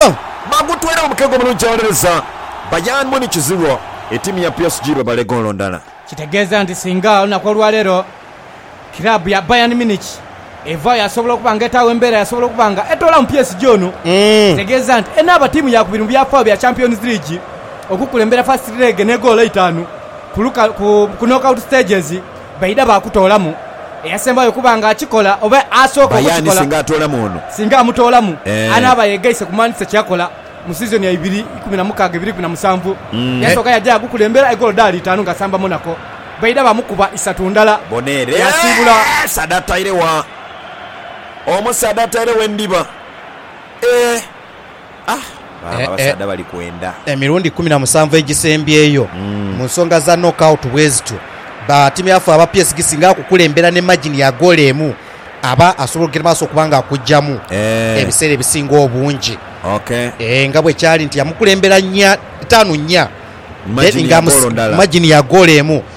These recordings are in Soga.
Bagutwere mu mukega omulungi awolereza Bayern Munich ziro, etiimu ya PSG bebale goolo ndala. Kitegeeza nti singa olunaku olwaleero kiraabu ya Bayern Munich evaayo yasobola okuba nga etaagho embeera yasobola okuba nga etoolamu PSG ono. Kitegeeza nti enaaba ttiimu yaakubiri mu byafaayo bya Champions League okukulembera first leg n'egoolo eitaanu ku knockout stages. Baidha baakutoolamu eyasembayo okuba nga akikola oba asooka Aye ani okukikola. singa atoolamu ono? Singa amutoolamu, Eeh. anaaba yeegaise ku Manchester kye yakola mu siizoni ya ibiri ikumi na mukaaga ibiri ikumi na musanvu. Yasooka yaja gukulembera e goolo dhaali itaanu ng'asamba Monaco. Baidha baamukuba isatu ndala, Bona ere. yaasiibula. Omusaadha ataire wa? Omusaadha ataire wa endhiba? Eeh! Baaba abasaadha bali kwenda. Emirundi ikumi na musanvu egisembyeyo mu nsonga za knockout bwezityo, batimiafu aba PSG singa akukulembera ne magini ya goolo emu aba asobola okugenda mu maaso okuba nga akuggyamu ebiseera ebisinga obungi nga bwe kyali nti yamukulembera nnya, itaanu nnya, magini ya goolo emu.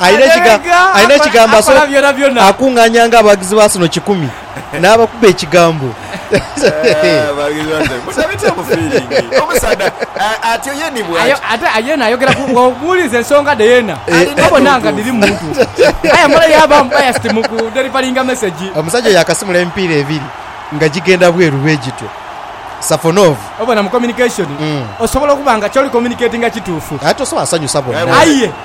Alina ekigambo akola byonabyona. Akung'anyanga abawagizi ba Arsenal kikumi n'abakuba ekigambo. Ate yeena ayogera ku, bw'omubuuliza ensonga dhe yeena abona nga dhiri mu mutu. Aye amala yaaba unbiased mu ku delivaringa mesegi. Omusajja oyo akasimula emipiira ebiri nga gigenda bweru bwe gityo. Safonov. Obona mu communication osobola okuba nga ky'oli communicatinga kituufu. Aye tosobola sanhusa bonna. Aye.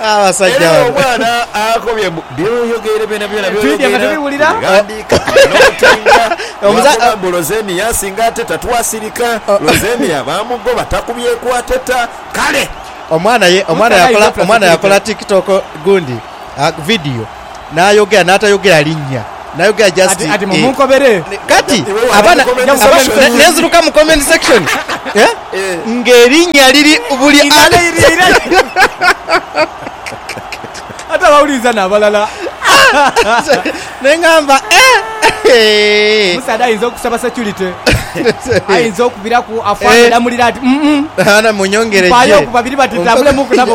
Abasajja Era bano. omwana akobye mbu by'oyogeire byonabyona by'oyogeira Twidya nga tubiwulira. tubighandiika n'otinga Omuza- lwakuba mbu Lozenia asinga ateta twasirika Lozenia baamugoba takubyeku ateta kale Omwana ye omwana Mutalayi yakola omwana yakola Joplin Tiktok gundi ah, video. N'ayogera n'atayogera linnya. N'ayogera just Ati, ati mu- eh. munkobere. Ne- Kati, Iwe wandika abaana, comment abaana, section. ne- nenziruka mu comment section. Eh? Eh. Ng'erinnya liri buli ali- Inalairira. Ate abawuliriza n'abalala. Ne ngamba, eh! Omusaadha ayinza okusaba security. Ayinza okubiraku afande Eh. namulira ati, "Mm, mm, Ana munyongere mpaayo gye. ku babiri batitambulemu okunaba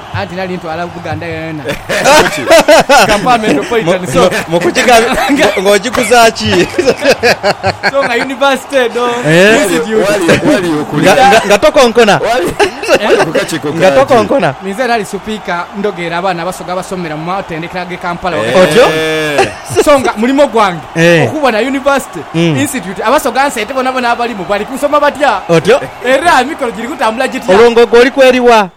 Anti nali ntwala Buganda yonayona Kampala Metropolitan so nga University edho, Institute. Ninze nali Supika ndogeera abaana Abasoga abasomera mu matendekero ag'e Kampala ghagati so nga mulimo gwange okubona University, Institute Abasoga nsente bonabona abalimu bali kusoma batya era emikolo giri kutambula gitya. Olwo nga ogwo oli kweri wa?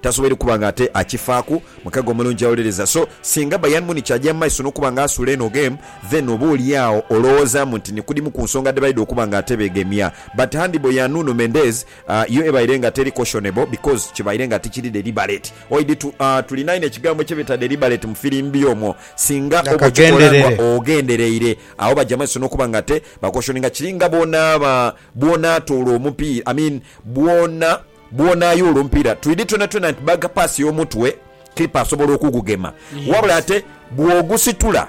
Tasoboire kuba nga ate akifaaku. Mukago omulungi awuliriza. So, singa Bayern Munich aja mu maiso n'okuba nga asuula eno game, then oba oli agho olowoozaamu nti ni ku dhimu ku nsonga dhebaidha okuba nga ate beegemya. But handball ya Nuno Mendez, yo ebaire nga teri cautionable because kibaire nga tikiri deliberate. Oidhi tu, aah, tulina inho ekigambo kye beeta deliberate mu firimbi omwo. Singa oba okikola nga ogendereire, agho baja mu maiso n'okuba nga ate ba cautioninga. Kiri nga bw'onaaba, bw'onaatoola omupiira, I mean, bw'ona. Bwona ayoola omupiira twidhi twonatwona nti baaga paasi y'omutwe kiipa asobola okugugema. Wabula ate bw'ogusitula,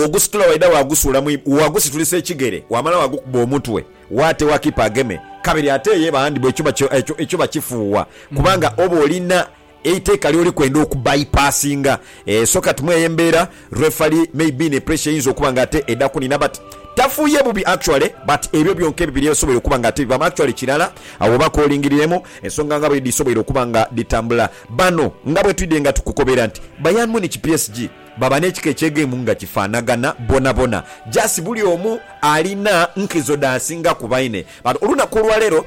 ogusitula waidha waagusuula mu ibbanga, waagusitulisa ekigere waamala waagukuba omutwe waategha kiipa ageme kabiri ate yeba handibolo ekyo bakifuuwa kubanga oba olina Eiteeka lyoli kwenda oku bypassinga eeh so kati mweyo embeera referee may be ne pressure eyinza okuba nga ate eda kunina but tafuuye bubi actually but ebyo byonka ebibiri ebisoboire okuba nga ate bivamu actually kirala agho oba kolingiriremu ensonga nga bwedhisoboire okuba nga dhitambula bano nga bwetwidde nga tukukobera nti Bayern Munich PSG baba nekika ekyegemu nga kifanagana bonabona just bulyoomu alina nkizo dhasinga kubaine but olunaku olwaleero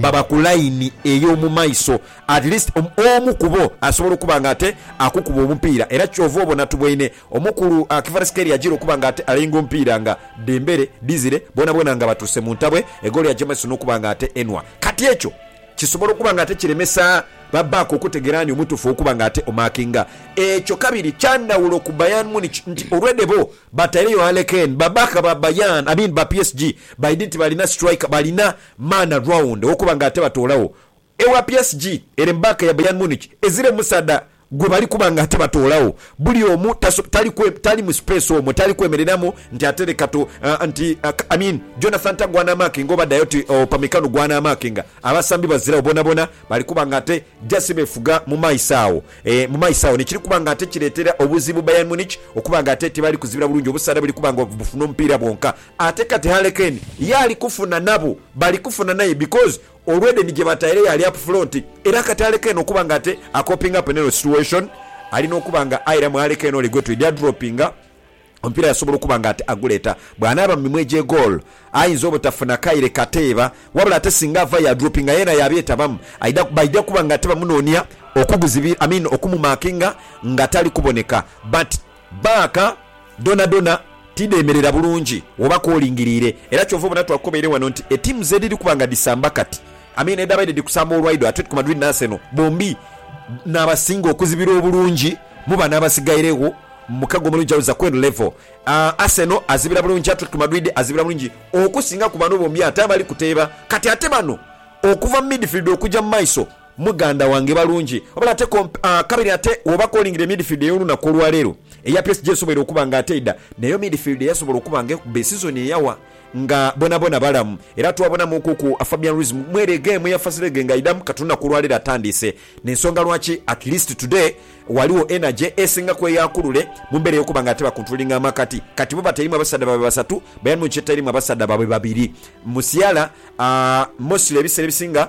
baba ku layini ey'omu maiso, at least omu ku bo asobola okuba nga ate akukuba omupiira era ky'ova obona tuboine omukulu Kvaratskhelia ajiire okuba nga ate alainga omupiira nga Dembele, Dizire boonaboona nga batuuse mu ntabwe egoolo ya James n'okuba nga ate enhwa. Kati ekyo kisobola okuba nga ate kiremesa ba back okutegera ani omutuufu ow'okuba nga ate omakinga ekyo. Kabiri kya ndhawulo ku Bayern Munich nti already bo bataireyo Harley Kane, ba back ba Bayern, I mean ba PSG baidhi nti balina striker, balina. Maana raunda olwokuba nga ate batoolagho ewa PSG ere mu baaka ya Bayern Munich ezira omusaadha gwe bali kuba nga ate batoolagho. Buli omu taso, tali kwe, tali mu space omwo, tali kwemereramu nti ate leka tu, ah, nti, ah, I mean, Jonathan Tah gw'anaamaakinga oba Dayot Upamecano gw'anaamaakinga. Abasambi baziragho bonabona, bali kuba nga ate just beefuga mu maiso agho, eh, mu maiso agho, n'ekiri kuba nga ate kireetera obuzibu Bayern Munich okuba nga ate tebali kuzibira bulungi obusaadha buli kuba nga bufuna omupiira bwonka. Ate kati Harley Kane ye ali kufuna nabo bali kufuna naye because olwedeni gyebataire yaali up front era kati Harley Kane okuba nga ate a coping up neno situation alina okuba nga airamu Harley Kane ole gwetwidi adroppinga omupiira yasobola okuba nga ate aguleeta bwanaaba mu mimwa egye goal ayinza obutafuna kaire kateeba wabula ate singa avayo adroppinga yeena yabyetabamu aidha baidha kuba nga ate bamunoonia okuguzibira I mean okumumakinga nga tali kuboneka but Baaka dhonadhona tidheemerera bulungi woba koolingiriire era kyova obona twakukobaire wano nti ettiimu z'edhiri kuba nga dhisamba kati I mean edhaabaire dhiri kusamba olwaido, Atletico Madrid ni Arsenal, bombi n'abasinga okuzibirwa obulungi mu bano abasigairegho mu mukago omulungi awo Zaqueen Level. Arsenal azibira bulungi, Atletico Madrid azibira bulungi okusinga ku bano bombi ate abali kuteeba kati ate bano okuva mu midfield okuja mu maiso. Muganda wange balungi wabula ate komp a kabiri ate woba calling the midfield eyolunaku olwaleero eya PSG esoboire okuba nga ate eda neyo midfield eyasobola okuba nga ekuba esizoni eyawa nga bonabona balamu era twabonamu ku ku Fabian Ruiz mwere egemu ya fasirege nga aidamu kati olunaku olwaleero atandiise nensonga lwaki at least today waliwo energy esinga kweyakulule mumbera eyokuba nga ate ba controllinga amakati kati bo batairimu abasadha babwe basatu bayern munich etairimu abasadha babwe babiri musiala a mostly ebisera ebisinga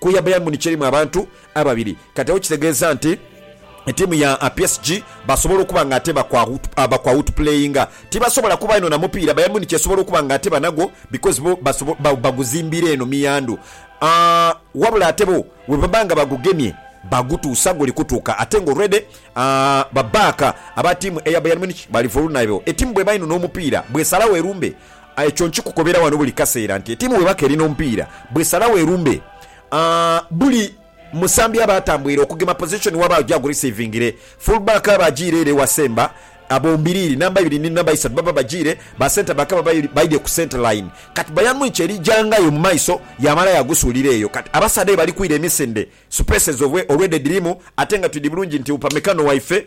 Ku ya Bayern Munich erimu abantu ababiri kati agho kitegeeza nti tiimu ya PSG basobola okuba nga ate bakwa utupuleyinga. Tibasobola kuba inho na mupiira, Bayern Munich esobola okuba nga ate banagwo because bo baguzimbira eno miyandhu wabula ate bo bwebaba nga bagugemye bagutuusa guli kutuuka ate nga already ba baaka aba tiimu eya Bayern Munich bali vulnerable. Etiimu bweba inho n'omupiira bw'esalagho erumbe Aye kyo nkikukobera wano buli kaseera nti etiimu bweba k'eri n'omupiira, bw'esalawo erumbe, buli musambi aba atambwire okugema pozishoni w'aba agurisiivingire. Fullback aba ajiire ere wa semba, bombiriri, namba ibiri ni namba isatu, baba bajiire, ba centreback baba baidhie ku centreline. Kati Bayern Munich eri gyangayo mu maiso yaamala yaagusuulira eyo. Kati abasaadha aye bali kwira emisinde, supeesi ezo olwedha edhirimu ate nga twidhi bulungi nti Upamecano waife,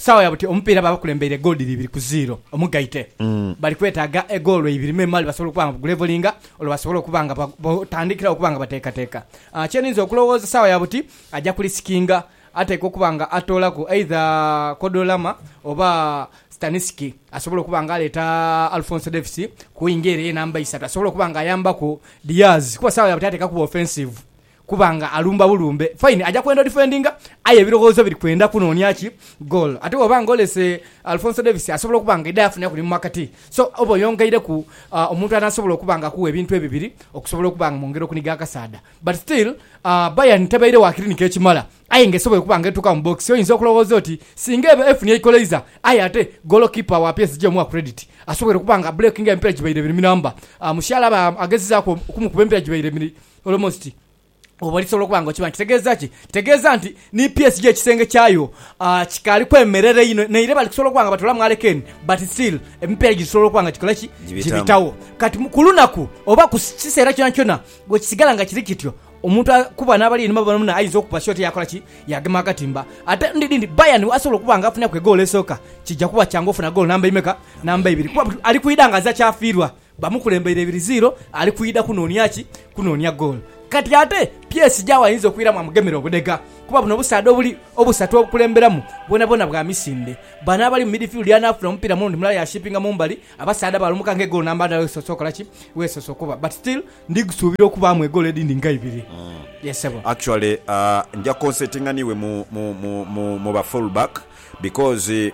Saawa ya buti omupiira baabakulembeire egoolo dhiri ibiri ku ziiro omugaite. Bali kwetaaga egoolo ibiri memale basobole okuba nga bagulevolinga olwo basobole okuba nga batandikirawo okuba nga bateekateeka. Kye ninza okulowooza saawa ya buti aja kulisikinga ateekwa okuba nga atoolaku eidha Kodolama oba Stanisiki asobole okuba nga aleeta Alfonso Davies ku wingi ere eyenamba isatu asobole okuba nga ayambaku Diaz kuba saawa ya buti ateekwa kuba ofensivu Kuba nga alumba bulumbe fine aja kwenda odifendinga aye ebiloghoozo biri kwenda kunoonia ki? Goal. Ate bw'oba nga olese Alfonso Davies asobola okuba nga aidha yafuna ku ni mu makati. So oba oyongeireku omuntu anaasobola okuba nga akuwa ebintu ebibiri okusobola okuba nga mwongera okuniga akasaadha. But still, Bayern tebaire wa kilinika ekimala aye nga esobola okuba nga etuuka mu box. Oyinza okuloghooza oti singa eba efunye eikoleiza aye ate goolokipa wa PSG omuwa credit asobwoire okuba nga abbulekinga emipira gibaire ebiri mi namba. Mushiala aba agezezaaku okumukuba emipira gibaire ebiri Almost oba lisobola okuba nga okimanyi kitegeeza ki? Kitegeeza nti ni PSG ekisenge kyayo kikaali kwemerera inho naire bali kusobola okuba nga batoolamu Harry Kane but still emipiira giri kusobola okuba nga gikola ki? Gibitawo. Kati ku lunaku oba ku kiseera kyonakyona bwe kisigala nga kiri kityo, omuntu ku bano abali einhuma bonaboona ayinza okukuba shoti yaakola ki? Yaagema akatimba. Ate endhuki edhindi Bayern asobola okuba nga afuniraku egoolo esooka, kija kuba kyangu ofuna goolo namba imeka? Namba ibiri kuba ali kwidha nga aza kyafiirwa. Bamukulembeire ibiri ziiro ali kwidha kunoonia ki? Kunoonia goolo. Kati ate PSG agho ayinza okwiramu amugemere obudhega kuba buno obusaadha obuli obusatu obukulemberamu bwonabwona bwa misinde. Bano abali mu midifiludi anaafuna omupiira muno nti mulala yashipinga mu mbali abasaadha balumuka nga egoolo namba ndala wesoose okola ki? Wesoose okuba. But still ndi kusuubira okubaamu egoolo edhindi nga ibiri. Yes ssebo. Actually nja concentinga n'iwe mu mu mu mu ba full back because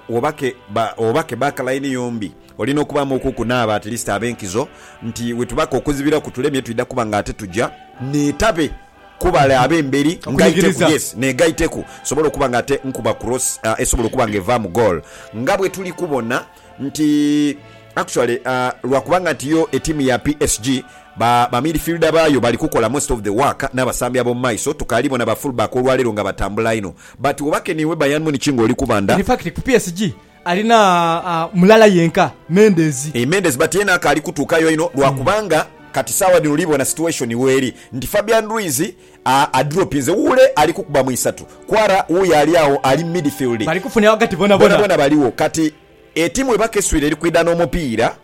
Wobake baaka layini yombi, olina okubaamu oku kunaaba at least ab'enkizo nti wetubaka okuzibira kutulemye twidha kuba nga ate tuja. Neetabe kubale ab'emberi ngaiteku, yes, negaiteku nsobole okuba nga ate nkuba cross esobola okuba nga evaamu goal nga bwetuli kubona. nti actually lwa kubanga nti yo etiimu ya PSG ba ba midfielder baayo bali kukola most of the work n'abasambi ab'omu maiso tukaali bona ba fullback olwaleero nga batambula inho but oba ke niiwe Bayern Munich ng'oli kubanda In fact ku PSG alina mulala yenka, Mendes. Eeh Mendes but yeena akaali kutuukayo inho lwa kubanga kati saawa dhino oli bona situation weeri nti Fabian Ruiz a adropinze wuule ali kukuba mu isatu. Kwara wuuyo ali agho ali midfield. Bali kufuna ghagati bonabona. Bonabona baligho. Kati etiimu we bakeswire eri kwidha n'omupiira.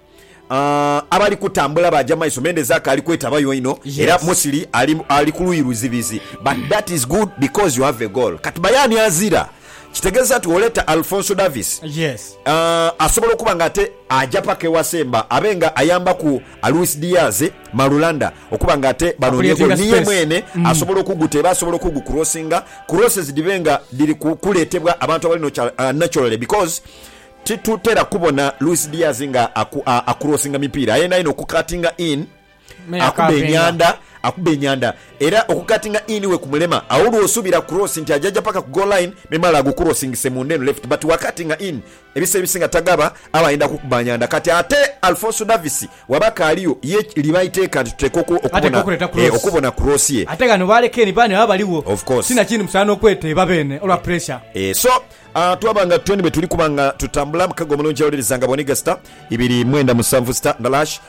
A abali kutambula baaja mu maiso. Mendez Aka ali kwetabayo inho era Musili ali ali ku luuyi luzibizi. But that is good because you have a goal. Kati Bayern azira, kitegeeza nti bw'oleeta Alphonso Davies, a asobola okuba ng'ate aja paka ewa Semba abe nga ayambaku a Luis Diaz, Marulanda. Okuba nga ate banoonia goolo, ni ye mwene asobola okuguteeba, asobola okugukurosinga. Crosses dhibe nga dhiri kuleetebwa abantu abali nokyali naturally because titutera kubona Luis Diaz nga akurosinga mipiira aye naye n'okukatinga in akuba enyanda, akuba enyanda era okukatinga in wekumulema agho lw'osuubira cross nti ajaja paka ku goal line memale agukurosingise munda eno left but wakatinga in, Ebiseera ebisinga tagaba aba ayenda kukuba nyanda kati ate Alfonso Davies waba akaaligho ye liba iteeka nti tuteekwa okubona e okubona cross ye. Ate ghano ba Lekeni baani baba baligho ti na kindi musaana okweteeba beene olwa puresha. E so a twaba nga twene bwe tuli kuba nga tutambula mukago omulungi awolereza nga bw'onigha sita ibiri mwenda musanvu sita ndala hash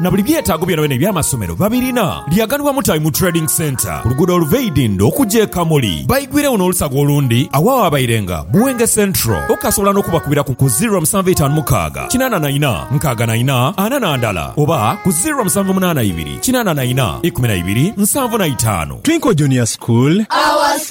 na buli byetaago byonabyona eby'amasomero babirina. Lyaganibwa Mutabi mu Trading Centre ku luguudo oluva e Idindho okuja e Kamuli. Baigwiregho n'olusaga olundi agho awaabairenga Buwenge Central. Okasobola n'okubakubira ku ku ziro musanvu etaanu mukaaga kinaana na ina nkaaga na ina ana na ndala oba ku ziro musanvu munaana ibiri kinaana na ina ikumi na ibiri nsanvu na itaanu. Twinkle Junior School.